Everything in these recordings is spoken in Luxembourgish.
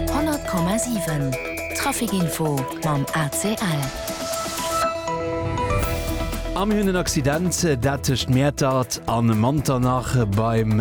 100,7 Trafic info mam ACL. A mir hunn en Accident, dat tëscht Mäertert a Manternach beim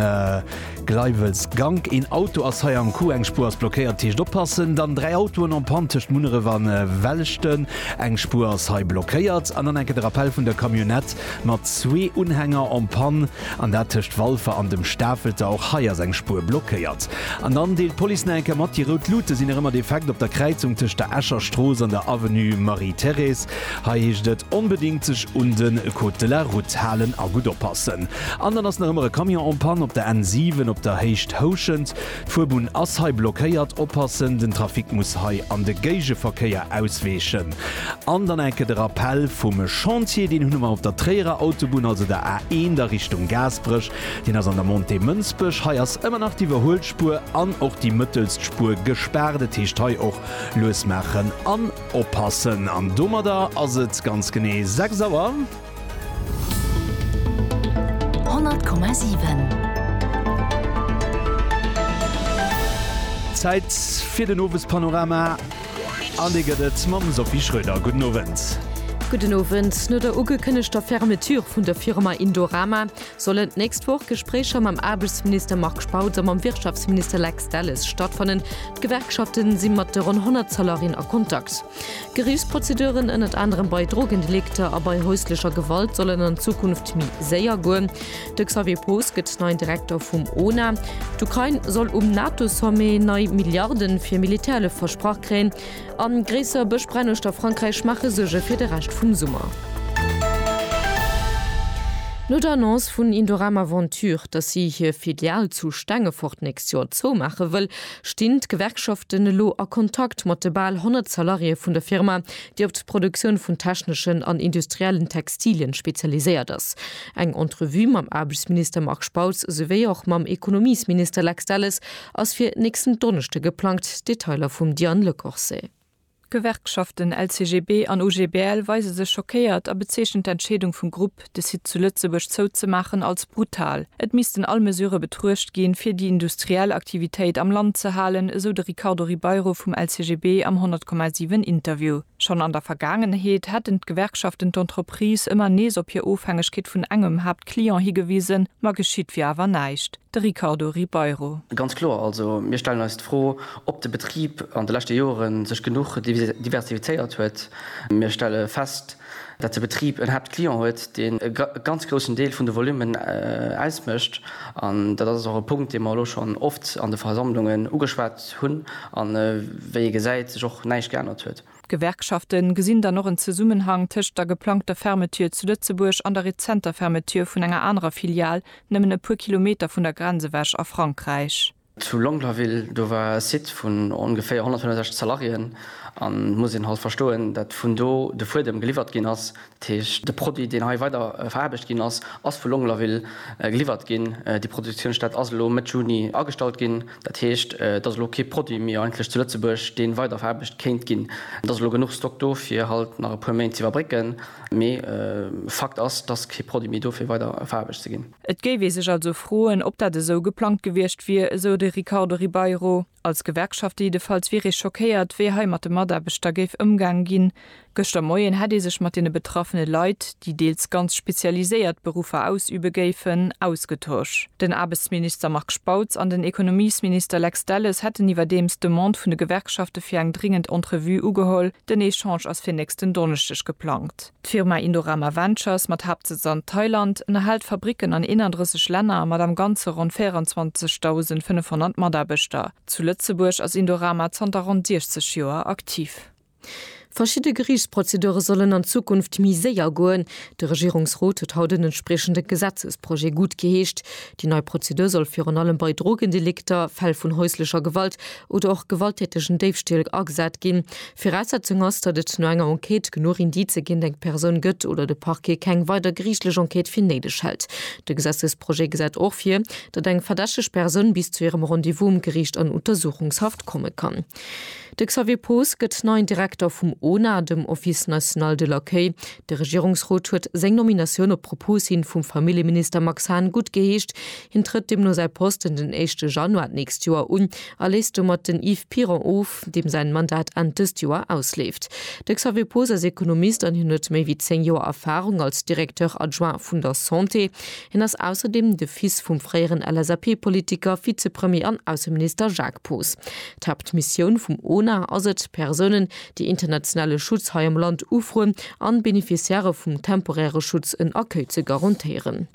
Gleiwels-Gank. Een Auto ass hei am Coup, eng Spuer ass blockéiert, dat heescht oppassen. Dann dräi Autoen en Panne tëscht Munneref a Welleschten, eng Spuer ass hei blockéiert. An dann enke de Rappell vun der Camionnette mat zwee Unhänger en Panne. An dat tëscht Walfer an dem Stafelter. Och hei ass eng Spuer blockéiert. An dann deelt d'Police nach eng Kéier mat, déi rout Luute sinn nach ëmmer defekt op der Kräizung tëscht der Escher Strooss an der Avenue Marie-Thérèse. Hei heescht et onbedéngt sech un de Code de la Route halen a gutt oppassen. An dann ass nach ëmmer e Camion en panne op der N7 op der Héicht Houschent. D'Fuerbunn ass hei blockéiert, oppassen, den Trafic muss hei an de Géigeverkéier ausweechen. An dann enke de Rappell vum Chantier, deen hunn emmer op der Tréierer Autobunn, also der A1 a Richtung Gaasperech, deen ass an der Montée Mënsbech. Hei ass ëmmer nach d'Iwwerhuelspuer an och déi mëttelst Spuer gespaart. Et heescht hei och lues maachen an oppassen. An domadder ass et ganz genee 6 Auer. Zäit fir den Owespanorama an dee gëtt et mam Sophie Schröder. Gudden Owend. Gudden Owend. No der ugekënnegter Fermeture vun der Firma Indorama soll Enn d'nächst Woch Gespréicher mam Aarbechtsminister Marc Spautz a mam Wirtschaftsminister Lex Delles stattfannen. D'Gewerkschafte si mat de ronn 100 Salariéen a Kontakt. Geriichtsprozeduren, ënnert anerem bei Drogendelikter a bei häuslecher Gewalt, sollen an Zukunft méi séier goen. De Xavier Poos gëtt neien Direkter vum ona. D'Ukrain soll um NATO-Sommet nei Milliarde fir Militärhëllef versprach kréien. A gréisser Bëschbränn uechter Frankräich maache Suerge fir de Rescht vum Summer. No der Annonce vun Indorama Ventures, datt si hir Filial zu Stengefort d'nächst Joer zoumaache wëll, Stinn d'Gewerkschaften elo a Kontakt mat de bal 100 Salariéë vun der Firma, déi op d'Produktioun vun techneschen an industriellen Textilien spezialiséiert ass? Eng Entrevue mam Aarbechtsminister Marc Spautz souwéi och mam Ekonomiesminister Lex Delles ass fir nächsten Donneschde geplangt, Detailer vum Diane Lecorset. D'Gewerkschaften LCGB an OGBL weise sech schockéiert a bezeechnen d'Entscheedung vum Grupp, de Site zu Lëtzebuerg zouzemaachen, als brutal. Et missten all Mesurë betruecht ginn, fir déi industriell Aktivitéit am Land ze halen, esou de Ricardo Ribeiro vum LCGB am 100,7 Interview. Schonn an der Vergaangenheet hätten d'Gewerkschaften d'Entreprise ëmmer nees op hir Ofhängegkeet vun engem Haaptclient higewisen, ma geschitt wier awer näischt. de Ricardo Ribeiro. Ganz kloer, also mir stellen eis d'Fro, ob de Betrib an de leschte Jore sech genuch diversifizéiert huet. Mir stelle fest, datt de Betrib en Haaptclient huet, deen e ganz groussen Deel vun de Volummen ausmécht. An dat ass och e Punkt, dee mer elo schonn oft an de Versammlungen ugeschwat hunn a wéi ee gesäit, sech och näischt geännert huet. D'Gewerkschafte gesinn dann och en Zesummenhang tëscht der geplangter Fermeture zu Lëtzebuerg an der rezenter Fermeture vun enger anerer Filial nëmmen e puer Kilometer vun der Grenz ewech a Frankräich. Zu Longlaville, do war e Site vun ongeféier 165 Salariéen an muss een halt verstoen, dat vun do de Fuedem geliwwert ginn ass, Dat heescht, de Produit, deen hei weider veraarbecht ginn ass, ass vu Longlaville geliwwert ginn. Déi Produktiounsstätt ass elo Mëtt Juni agestallt ginn. Dat heescht, et ass elo kee Produit méi eigentlech zu Lëtzebuerg, dee weider veraarbecht kéint ginn. Et ass elo genuch Stock do, fir halt nach e puer Méint z'iwwerbrécken, mee Fakt ass, dass kee Produit méi do fir weider veraarbecht ze ginn. Et géif ee sech also froen, ob dat esou geplangt gewiescht wier, esou de Ricardo Ribeiro. Als Gewerkschaft jiddefalls wier ee schockéiert, wéi hei mat de Mataarbechter géif ëmgaange ginn. Gëschter Moien hätt ee sech mat deene betraffene Leit, déi deels ganz spezialiséiert Beruffer ausübe géifen, ausgetosch. Den Aarbechtsminister Marc Spautz an den Ekonomiesminister Lex Delles hätten iwwerdeems d'Demande vun de Gewerkschafte fir eng dringend Entrevue ugeholl. Den Echange ass fir nächsten Donneschdeg geplangt. D'Firma Indorama Ventures, mat Haaptsëtz an Thailand, ënnerhält Fabricken an 31 Länner mat am Ganze ronn 24.500 Mataarbechter. Zu Lëtzebuerg ass Indorama zanter ronn 60 Joer aktiv. Verschidde Geriichtsprozedure sollen an Zukunft méi séier goen. De Regierungsrot huet haut en entspriechende Gesetzesprojet guttgeheescht. Déi nei Prozedur soll virun allem bei Drogendelikter, Fäll vun häuslecher Gewalt oder och gewalttätegen Déifstiel agesat ginn. Viraussetzung ass, datt et no enger Enquête genuch Indicë géint eng Persoun gëtt oder de Parquet keng weider geriichtlech Enquête fir néideg hält. De Gesetzesprojet gesäit och vir, datt eng verdächteg Persoun bis zu hirem Rendez-vous um Geriicht an Untersuchungshaft komme kann. De Xavier Poos gëtt neien Direkter vum ONA, dem Office national de l'accueil. De Regierungsrot huet seng Nominatioun op Propos hin vum Familljeminister Max Hahn guttgeheescht. Hien trëtt deemno säi Posten den éischte Januar d'nächst Joer un a léisst domat den Yves Piron of. Grupp, deem säin Mandat Enn dëst Joer ausleeft. De Xavier Poos ass Ekonomist an hien huet méi wéi 10 Joer Erfahrung als Directeur adjoint vun der Santé. Hien ass ausserdeem de Fils vum fréieren LSAP-Politiker, Vizepremier an Ausseminister Jacques Poos. D'Haaptmissioun vum ONA ass et, Persounen, déi internationale Schutz hei am Land ufroen, an Beneficiairë vum temporäre Schutz en Accueil ze garantéieren.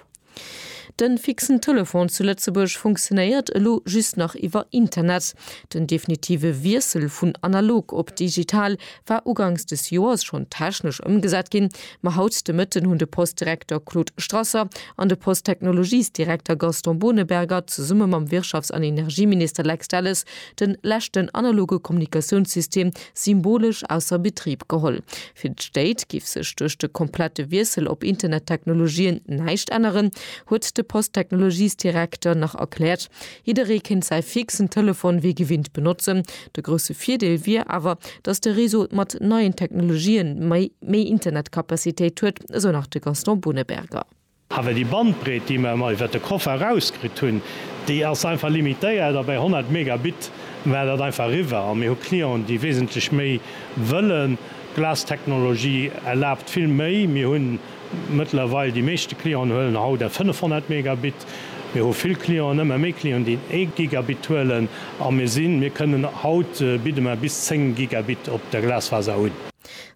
Den fixen Telefon zu Lëtzebuerg funktionéiert elo just nach iwwer Internet. Den definitive Wiessel vun analog op digital war ugangs des Joers schonn technesch ëmgesat ginn, ma haut de Mëtten hunn de Post-Direkter Claude Strasser an de Post-Technologies-Direkter Gaston Boneberger zesumme mam Wirtschafts an Energieminister Lex Delles de leschten analoge Kommunikatiounssystem symbolesch ausser Betrib geholl. Fir d'Stéit giff sech duerch de komplette Wiessel op Internettechnologien näischt änneren, huet de Posttechnologiesdirekter nach erkläert. Jidderee kéint säi fixen Telefon wéi gewinnt benotzen. De grousse Virdeel wier awer, datt de Réseau mat neien Technologien méi Internetcapacitéit huet, esou nach de Gaston Boneberger. Awer déi Bandbreet, déi mer iwwert de Koffer erauskritt hunn, déi ass einfach limitéiert a bei 100 Megabit war dat einfach eriwwer. A mir hu Clienten, déi wesentlech méi wëllen. D'Glas-Technologie erlaabt vill méi. Mir hu mëttlerweil, déi meeschte Clienten huelen haut eng 500 Megabit. Mir hu vill Clienten, ëmmer méi Clienten, déi en ee Gigabit huelen. A mir sinn, mir kënnen, haut bidde mer bis 10 Gigabit op der Glasfaser un.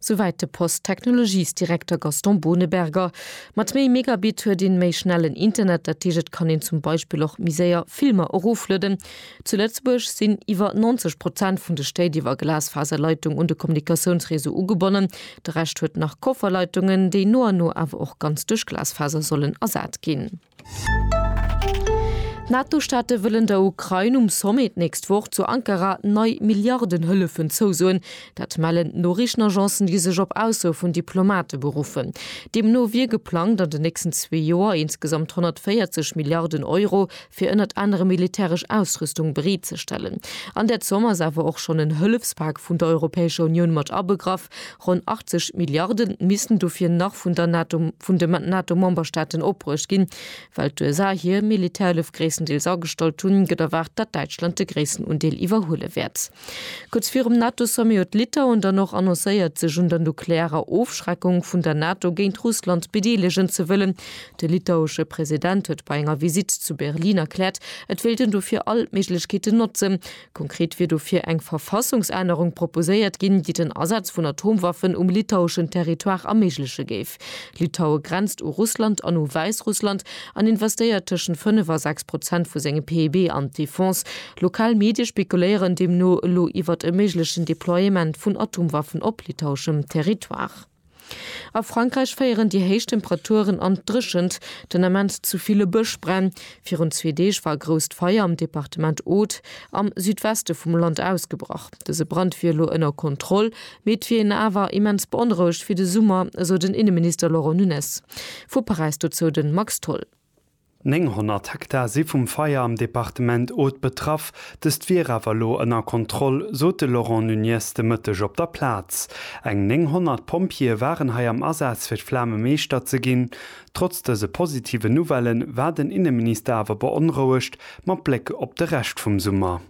Souwäit de Post-Technologies-Direkter Gaston Boneberger. Mat méi Megabit huet een méi schnellen Internet, dat heescht et kann een zum Beispill och méi séier Filmer eroflueden. Zu Lëtzebuerg sinn iwwer 90 Prozent vun de Stéit iwwer Glasfaserleitung un de Kommunikatiounsreseau ugebonnen. De Rescht huet nach Kofferleitungen, déi no an no awer och ganz duerch Glasfaser sollen ersat ginn. D'NATO-Staate wëllen der Ukrain um Sommet d'nächst Woch zu Ankara nei Milliarden Hëllefen zousoen. Dat mellen d'Noriichtenagencen, déi sech op Aussoe vun Diplomate beruffen. Deemno wier geplangt, an den nächsten zwee Joer insgesamt 140 Milliarden Euro fir ënnert anerem militäresch Ausrüstung bereetzestellen. An där Zomm ass awer och schonn en Hëllefspak vun der Europäescher Unioun mat abegraff. Ronn 80 Milliarde missten dofir nach vun der NATO, vun de NATO-Memberstaaten opbruecht ginn. Well d'USA hir Militärhëllef gréisstendeels agestallt hunn, gëtt erwaart, datt Däitschland de gréissten Undeel iwwerhuele wäert. Kuerz virum NATO-Sommet huet Litauen dann och annoncéiert, sech un der nuklearer Ofschreckung vun der NATO géint Russland bedeelegen ze wëllen. De litauesche President huet bei enger Visitt zu Berlin erkläert, et wéilt en dofir all Méiglechkeeten notzen, Konkret wier dofir eng Verfassungsännerung proposéiert ginn, déi den Asaz vun Atomwaffen um litaueschen Territoire erméigleche géif. Litaue grenzt u Russland an u Wäissrussland an investéiert tëschent 5 a 6 Prozent vu sengem PIB an d'Defense. Lokal Medie spekuléieren deemno elo iwwert e méiglechen Deploiement vun Atomwaffen op litaueschem Territoire. A Frankräich féieren déi héich Temperaturen an d'Dréchent, den Ament zu ville Bëschbränn. Virun zwee Deeg war e grousst Feier am Departement Aude am Südweste vum Land ausgebrach. Dëse Brand wier elo ënner Kontroll, mee et wier een awer immens beonrouegt fir de Summer, esou den Inneminister Laurent Nunez vu Paräis. Dozou de Max Tholl. 900 Hektar si vum Feier am Departement Aude betraff. Dëst wier awer elo ënner Kontroll, sot de Laurent Nunez de Mëtteg op der Plaz. Eng 900 Pompjeeë waren hei am Asaz fir d'Flame meeschter ze ginn. Trotz dëse positiven Nouvelle war den Inneminister awer beonrouegt mat Bléck op de Rescht vum Summer.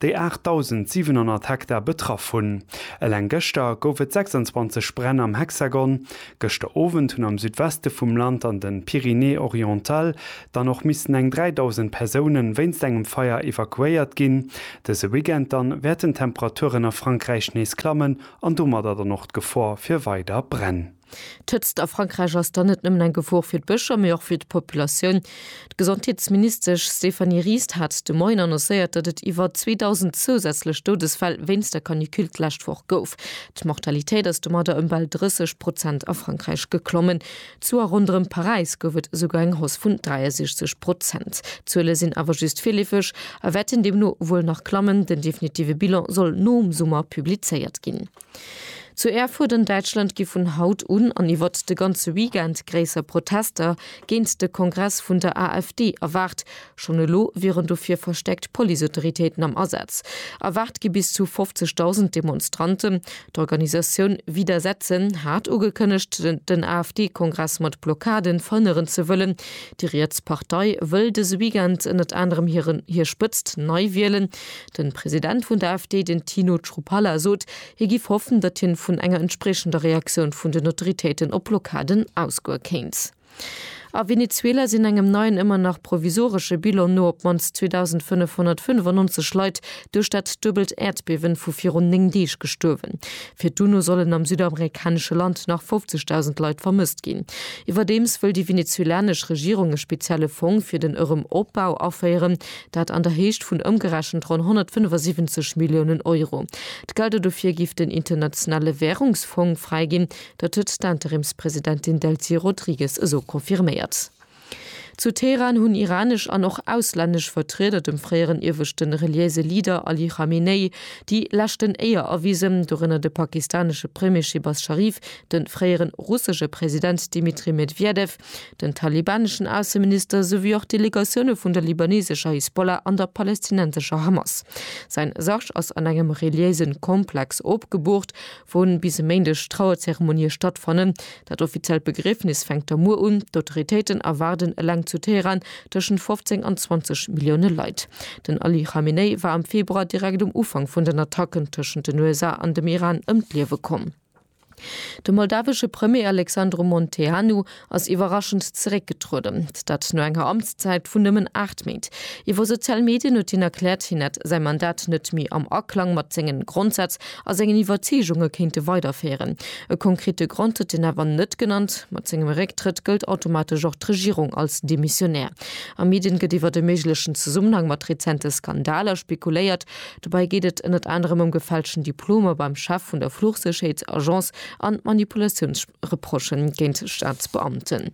déi 8.700 Hektar betraff hunn. Eleng gëschter gouf et 26 Bränn am Hexagon. Gëschter Owend hunn am Südweste vum Land an den Pyrénées-Orientales dann och missen eng 3.000 Persoune wéinst engem Feier evakuéiert ginn. Dëse Weekend dann wäerten d'Temperaturen a Frankräich nees klammen an domadder dann och d'Gefor fir weider Bränn. D'Hëtzt a Frankräich ass dann net nëmmen eng Gefor fir d'Bëscher, mee och fir d'Populatioun. D'Gesondheetsministesch Stéphanie Ries hat de Moien annoncéiert, datt et iwwer 2.000 zousätzlech Doudesfäll wéinst der Canicule d'lescht Woch gouf. D'Mortalitéit ass domadder ëm bal 30 Prozent a Frankräich geklommen. Zu a ronderëm Paräis gouf et esouguer eng Hausse vun 63 Prozent. D'Zuele sinn awer just virleefeg a wäerten deemno wuel nach klammen. Den definitive Bilan soll nom Summer publizéiert ginn. Zu Erfurt an Däitschland gi vun haut un an iwwert de ganze Weekend gréisser Protester géint de Kongress vun der AfD erwaart. Schonn elo wieren dofir verstäerkt Policeautoritéiten am Asaz. Erwaart gi bis zu 50.000 Demonstranten. D'Organisatioun Widersetzen hat ugekënnegt, den AfD-Kongress mat Blockaden verhënneren ze wëllen. Déi riets Partei wëll dëse Weekend ënnert anerem hir Spëtzt nei wielen. Den President vun der AfD, den Tino Chrupalla sot, hie giff hoffen, datt hien vun enger entspriechender Reaktioun vun den Autoritéiten op Blockaden ausgoe kéint. A Venezuela sinn engem neien, ëmmer nach provisoresche Bilan no op d'mannst 2.595 Leit duerch dat duebelt Äerdbiewen vu virun 9 Deeg gestuerwen. Fir d'UNO sollen am südamerikanesche Land nach 50.000 Leit vermësst ginn. Iwwerdeems wëll déi venezuelanesch Regierung e spezielle Fong fir den Erëm Opbau aféieren, Dat an der Héicht vun ëmgerechent ronn 175 Milliounen Euro. D'Gelder dofir giff den Internationale Währungsfong fräiginn. Dat huet d'Interimspresidentin Delcy Rodrigues esou confirméiert. Zu Teheran hunn iranesch an och auslännesch Vertrieder dem fréieren ieweschte reliéise Leader Ali Khamenei déi leschten Éier erwisen, dorënner de pakistanesche Premier Shehbaz Sharif, de fréiere russesche President Dmitri Medwedew, Den talibaneschen Ausseminister souwéi och Delegatioune vun der libanesescher Hisbollah an der palestinensescher Hamas. Säin Sarg ass an engem reliéise Komplex opgeboort, wou bis e Méindeg Trauerzeremonie stattfannen. Dat offiziellt Begriefnis fänkt da muer un. D'Autoritéiten erwaarden eleng zu Teheran tëschent 15 an 20 Millioune Leit. Den Ali Khamenei war am Februar direkt um Ufank vun den Attacken tëschent den USA an dem Iran ëm d'Liewe komm. De moldawesche Premier Alexandru Munteanu ass iwwerraschend zeréckgetrueden, dat no enger Amtszäit vun nëmmen 8 Méint. Iwwer sozial Medien huet hien erkläert, hien hätt säi Mandat net méi am Aklang mat senge Grondsätz a sengen Iwwerzeegunge kéinte weiderféieren. E konkrete Grond huet hien awer net genannt. Mat sengem Récktrëtt gëllt automatesch och d'Regierung als demissionär. A Medien gëtt iwwer e méiglechen Zesummenhang mat rezente Skandaler spekuléiert. Dobäi geet et ënnert anerem ëm gefälschten Diplomer beim Chef vun der Fluchsécherheetsagence an Manipulatiounsreproche géint Staatsbeamten.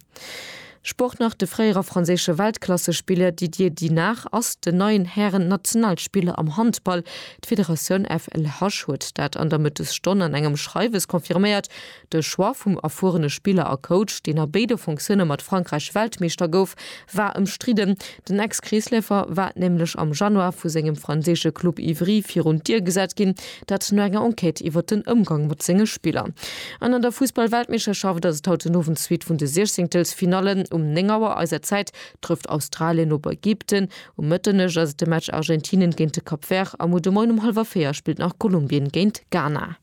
Sport nach, De fréiere franséische Weltklassespiller Didier Dinard ass den neien Hären-Nationalspiller am Handball. D'Federatioun FLH huet dat an der Mëttesstonn an engem Schreiwes confirméiert. De Choix vum erfuerene Spiller a Coach, deen a béide Fonctionne mat Frankräich Weltmeeschter gouf, war ëmstridden. Den Ex-Kreesläufer war nämlech am Januar vu sengem franséische Club Ivry virun d'Dier gesat ginn, dat no enger Enquête iwwer den Ëmgang mat senge Spiller. An an der Fussball-Weltmeeschterschaft ass et haut den Owend d'Suite vun de Siechzéngtelsfinallen. Um 9 Auer eiser Zäit trëfft Australien op Ägypten, um Mëtternuecht ass et de Match Argentinien géint de Cap Vert a muer de Moien um hallwer 4 spillt nach Kolumbien géint Ghana.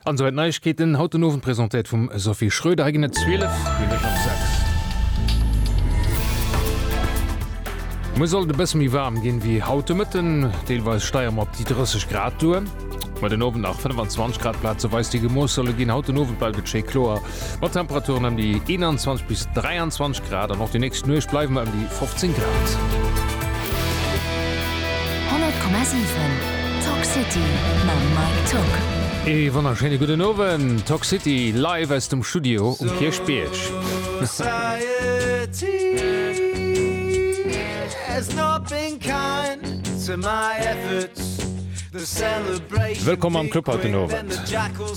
An souwäit d'Neiegkeeten haut den Owend, presentéiert vum Sophie Schröder. Hei ginn et 12 Minutten op 6. Muer soll et e bësse méi waarm ginn, wéi haut de Mëtten. Deelweis steie mer op déi 30 Grad duer, ma den Owend nach 25 Grad. Plazeweis, déi gemooss solle ginn. Haut den Owend bleift et schéi kloer, mat Temperaturen ëm déi 21 bis 23 Grad an och déi nächst Nuecht bleiwe mer ëm déi 15 Grad. 100,7 Talk City mam Mike Tuck. Ee wonnerschéine gudden Owend, Talk City live aus dem Studio um Kierchbierg. Wëllkomm am Club haut den Owend.